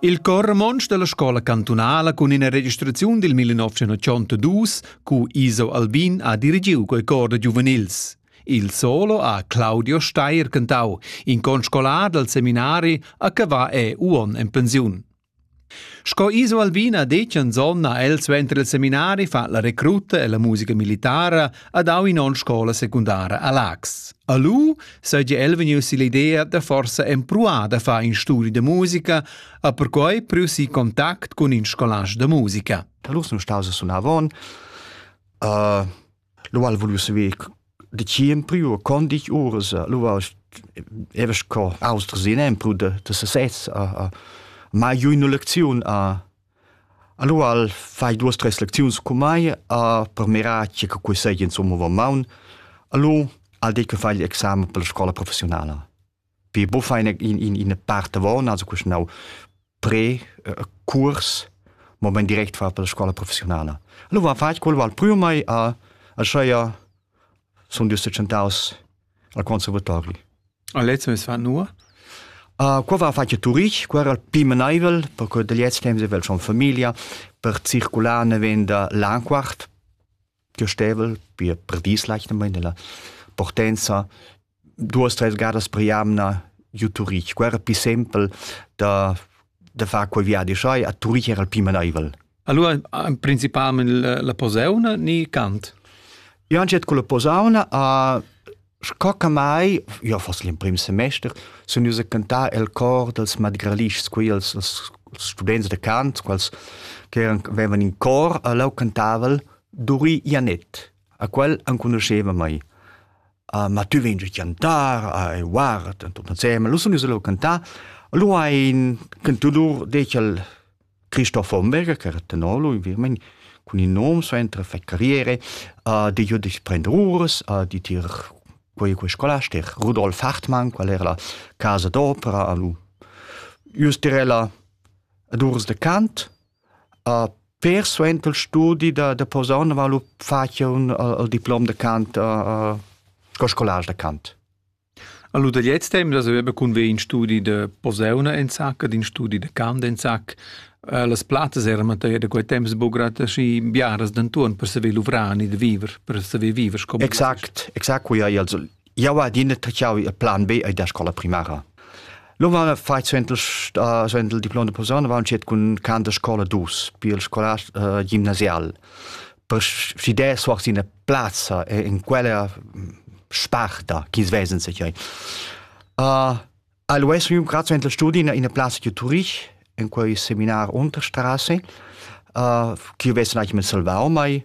Il Chor romontsch dalla scola cantunala cun ina registraziun dil 1982 cu Iso Albin ha dirigiu quei cor da giuvenils. Il solo ha Claudio Steyer cantau, in conscolar dal seminari a Cavà e Uon en pensiun. Sco Iso Albina detgan zonna el suenter il seminari fa la recruta e la musica militara ad au in on scola secundara a Lax. A lu seigi el vegnius l'idea da forsa empruar da far in studi de musica, a perquei preusi contact cun in scolage de musica. Da lur sun staus sunavon. Uh, Lu al vuliu saver decir empriu e con ditg uras. Lu evas co austras in empru da, da sesez. A, a, mai giu ina lecziun a, Allora al fai duas, tres lecziuns con mai a per mirar che quei seigi insomma va maun. Allora al dei che fai l'examen per la scola professionala. Pi bufa ina, in, in, ina part avon, also questo now pre uh, curs moment direct far per la scuola professionale. Allora va fatg quello al primo mai a a scheia sono giusto centaus al conservatori. A letzte es war nur? Uh, qua va fatg turich, qua era pi menaivel, perché dagli temps avevo schon familia, per circolare ne venda l'anquart, gestevel per per dis leichter mal nella portenza duas tres gadas per jamna giu Turich quera pi sempel da da far quei viadi schai a Turich era il pi maneivel Allora, principalmente la posauna ni cant? Io anche con la posauna a Sco che mai, io foss l'emprim semester, sun ius a cantar el cor dels madgralischs, quei els, els students de cant, quals che avevan in cor, a leu cantaval Duri Janet, a quel enconuscheva mai. Uh, ma tu vegn giu cantar, uh, e guarda, entusiasme, lu sun ius leu cantar, lu ein cantudur decel Christopher Berger, che era tenolog in Virmani, cun il nome suenter fai carriere, uh, di giu di prender uras, uh, di tir quei quei scolaster Rudolf Hartmann, qual era la casa d'opera, lu ius tirella ad urs de Kant, uh, per suenter il studi da, da Posaune va lu facia un uh, il diplom de Kant, uh, uh, sco scolars de Kant. Alura da gliez temp da saver be cunver in studi da posauna enzacca, d'in studi da cant enzacca. Eh, las plattas eran materia da quei temps buca grad aschi biaras denton per saver luvrar e da viver, per saver viver sco Exact, exact quei ei also. Jau adina tachau il plan B e da scola primara. Lo va fai suentel uh, suentel diploma de posauna va uncet cun can de scola dus, pi il scolast uh, gimnasial. Per si de soar sina plazza e in quella sparta chi svesen se chiai. Uh, al US un grazie in la studi in una plaza di Turich in quel seminar Unterstraße uh, chi vesen eigentlich mit salvau mai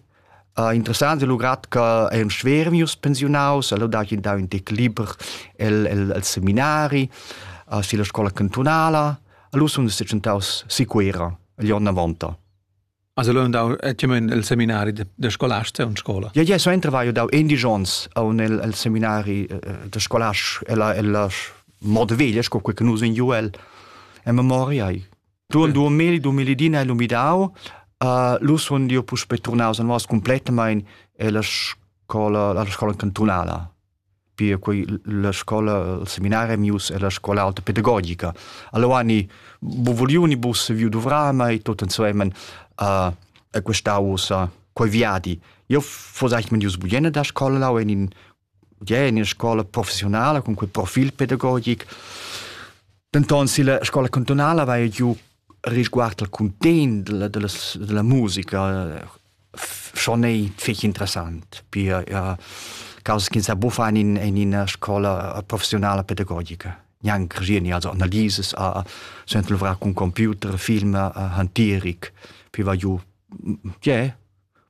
Uh, interessant è lugrat che è un schwer mius pensionaus, allora da che da un tec liber el, el, el seminari, uh, sulla scuola cantunala, allora sono sicuntaus sicura, gli anni 90. Also l'ho dau etgemen el seminari da scolasta in scola. Ja, ja, so entravai dau indies ons a un el, el seminari da scolast ella ella mod veglia sco quei che nus in Joel en memoria ai. Du on 2000 2010 el umidau uh, lu sun io puspe turnaus an was completamain e la scola la scola cantunala Pia quei la scola, il seminari mius e la scola alta pedagogica. Allora ni buvuliu ni bus saviu duvrar mei tot ensemen uh, e questa ussa quei viadi. Io fos eigentlich mit bugliene da scola lau in in ja in scola professionale con quel profil pedagogic. Denton si la scola cantonale va giù risguard al content della, della, della musica schon ei fich interessant pia ja, causa che sa buffan in, in ina scola professionale pedagogica gnanc geni also analises a sent luvrar con computer film hantieric piva ju je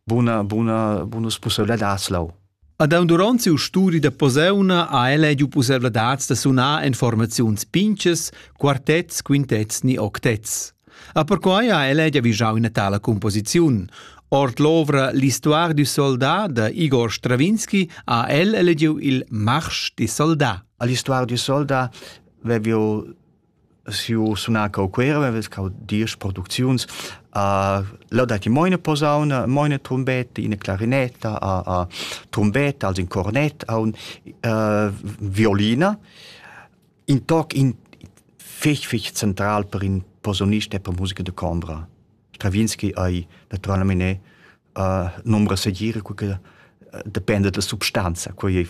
buna buna bonus possibilità lau Ad aun duront siu studi da posauna ha el ediu pusseivladads da sunar en formaziuns pintgas, quartets, quintets ni octets. A perquai ha el edia vigiau ina tala composiziun. Ord l'ovra L'histoire du soldat da Igor Stravinski ha el elegiu il Marsch di soldat. L'histoire du soldat veviu Siu sunar cau Cuera, vevs cau diesch producziuns. Uh, leu dat i moina posauna, moina trumbetta, ina clarinetta, uh, uh, trumbetta, also in cornett, un uh, violina. In toc in fich fich central per in posaunist e per musica de combra. Stravinski ei naturalmente ne uh, nombra segir cu che depende dalla substanza, quei ei